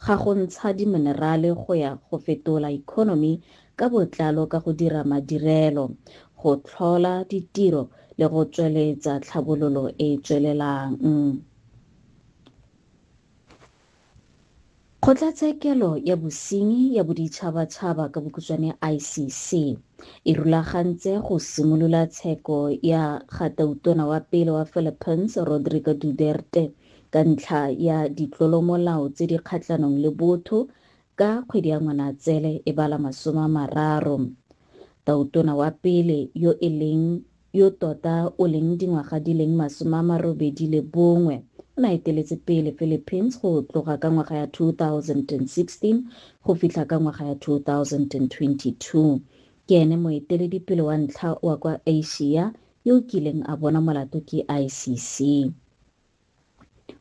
ga go ntsha diminerale go ya go fetola economy ka botlalo ka go dira madirelo, go tlhola ditiro le go tsweletsa tlhabololo e e tswelelang. Kgotlatshekelo ya Bosenyi ya Boditšhabatšhaba ka bokhutshwane ICC e rulagantse go simolola tsheko ya ga Tautona wa pele wa Philippines Rodrigo Duterte ka ntlha ya ditlolomolao tse di kgatlhanong le botho ka kgwedi ya Ngwanatsele e ba la masome a mararo. Tautona wa pele yo e leng yo tota o leng dingwaga di leng masome a marobedi le bongwe o ne a eteletse pele Philippines go tloga ka ngwaga ya 2016 go fitlha ka ngwaga ya 2022. Ke ene moeteledipele wa ntlha wa kwa Asia yo o kileng a bonwa molato ke ICC.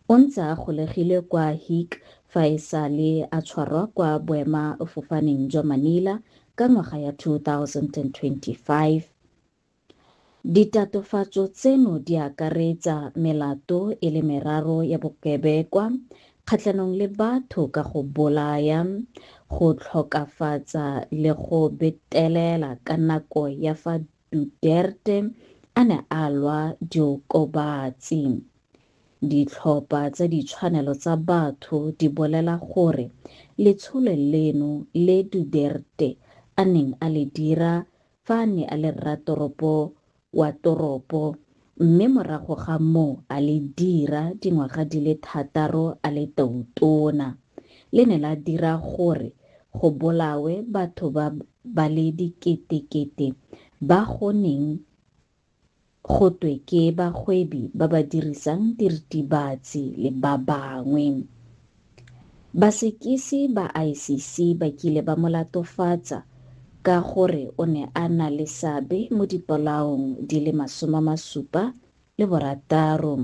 O ntse a golegilwe kwa Hague fa e sa le a tshwarwa kwa boemafofaneng jwa Manila ka ngwaga ya 2025. Ditatofatso tseno di akaretsa melato e le meraro ya bokebekwa kgatlhanong le batho ka go bolaya, go tlhokafatsa le go betelela ka nako ya fa Duterte a ne a lwa diokobatsi. Ditlhopha tsa ditshwanelo tsa batho di bolela gore letsholo leno le Duterte a neng a le dira fa a ne a le rratoropo wa toropo mme morago ga moo a le dira dingwaga di le thataro a le tautona, le ne la dira gore go bolawe batho ba ba le diketekete ba go neng go twe ke bagwebi ba ba dirisang diritibatsi le ba bangwe. Basekisi ba ICC ba kile ba mo latofatsa ka gore o ne a na le seabe mo dipolaong di le masome a masupa le borataro.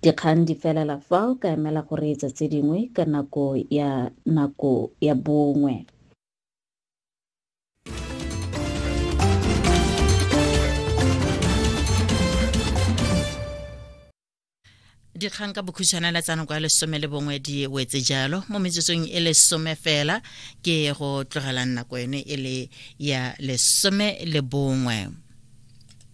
Dikgang di felela fao ka emela go reetsa tse dingwe ka nako ya nako ya bongwe. dikgang ka bokhutshwana la tsanoko ya lesome le bongwe di wetse jalo mo metsotsong e lesome fela ke go tlogelang nako yone e le ya lesome le bongwe